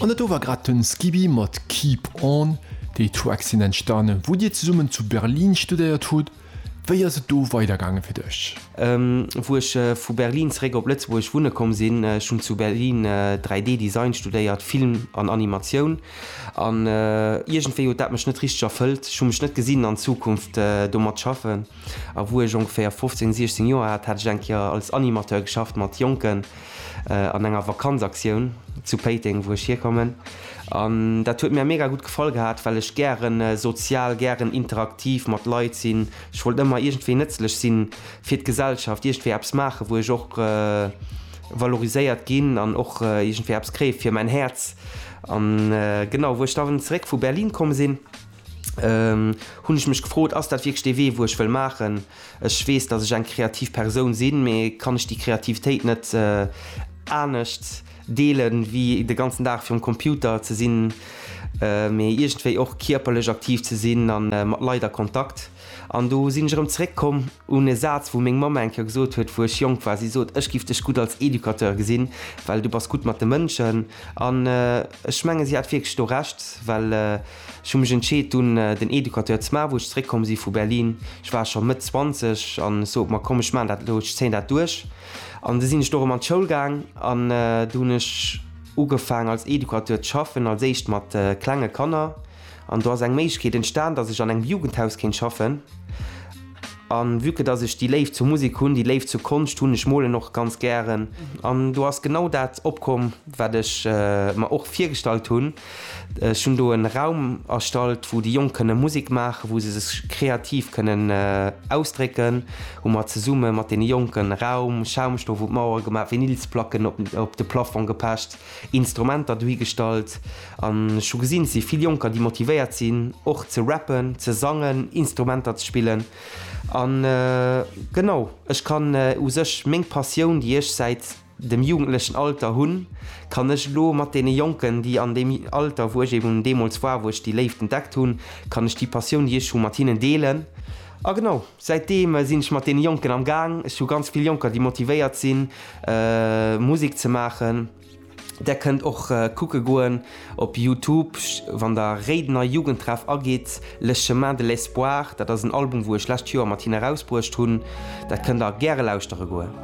An et do war grad den Skibi mat Keep On. Déi Tracks sinn entstanen wou dir zesummen zu Berlin studéiert hutt. Wéi ass et do weider gaangen fir dech? Wou ech vu Berlin zeréck op Lëtzebuerg wunne komm sinn, ech hunn zu Berlin 3D Design studéiert, Film an Animatioun an iergendwéi huet dat mech net richteg erfëllt. Ech hu mech net gesinn an Zukunft domat schaffen. A wou ech ongeféier 15, 16 Joer hat, hat ech eng Kéier als Animateur geschafft mat Jonken an enger Vakanzaktioun zu Péiteng, wou ech hierkommen. An dat huet mir mega gutt gefall gehat, well ech gären sozial, gären interaktiv mat Leit sinn. Ech wollt ëmmer iergendwéi nëtzlech si fir d'Gesellschaft, iergendwéi eppes maachen, wou ech och valoriséiert ginn an och iergendwéi eppes kréie fir mäin Häerz. An genau, wou ech dann zeréck vu Berlin komm sinn, hunn ech mech gefrot, ass dat wierklech dee Wee wou ech wëll maachen? Ech weess, datt ech eng kreativ Persoun sinn, mee kann ech déi Kreativitéit net anescht deelen, wéi de ganzen Dag virum Computer ze sinn, mee iergendwéi och kierperlech aktiv ze sinn a mat Leit a Kontakt? An do sinn ech erëm zeréck komm un e Saz wou meng Mamm eng Kéier gesot huet wou ech jonk war, si sot, ech giff dech gutt als Educateur gesinn, well du bass gutt mat de Mënschen. An ech menge si hat wierklech do Recht, well. Ech hu mech entscheet dunn den Educateur ze maachen wou ech zeréck komm si vu Berlin. Ech war scho Mëtt 20 an ech sot mer komm ech maachen dat elo, ech zéien dat duerch. An du sinn ech do erëm an d'Schoul gaang an du hunn ech ugefaang als Educateur ze schaffen, als éischt mat klenge Kanner an do ass eng Méiglechkeet entstan datt ech an engem Jugendhaus kéint schaffen. An vue que datt ech déi Léift zur Musek hunn, déi Léift zur Konscht hunn, ech molen och ganz gären an do ass genau dat opkomm wat ech mer och virgestallt hunn. Ech hunn do en Raum erstallt wou déi Jonk kënne Musik maachen, wou se sech kreativ kënnen ausdrécken, hu mer zesumme mat deene Jonken Raum, Schaumstoff un d'Mauere gemaach, Vinylsplacken op de Plafong gepecht, Instrumenter dohi gestallt an ech hu gesinn et si vill Jonker déi motivéiert sinn och ze rappen, ze sangen, Instrumenter ze spillen an genau ech kann u sech meng Passioun déi ech säit dem jugendlechen Alter hunn, kann ech elo mat deene Jonken, déi an deem Alter, wou ech eben deemools war, wou ech déi Léift entdeckt hunn, kann ech déi Passioun, déi ech hu, mat hinnen deelen. A genau säitdeem sinn ech mat deene Jonken am Gaang. Ech hu ganz vill Jonker, déi motivéiert sinn, Musek ze maachen. Där kënnt och kucke goen. Op Youtube, wann der Réidener Jugendtreff agitt, Le Chemin de l'Espoir, dat ass en Album wou ech lescht Joer mat hinnen erausbruecht hunn, dat kënnt der gäre lauschtere goen.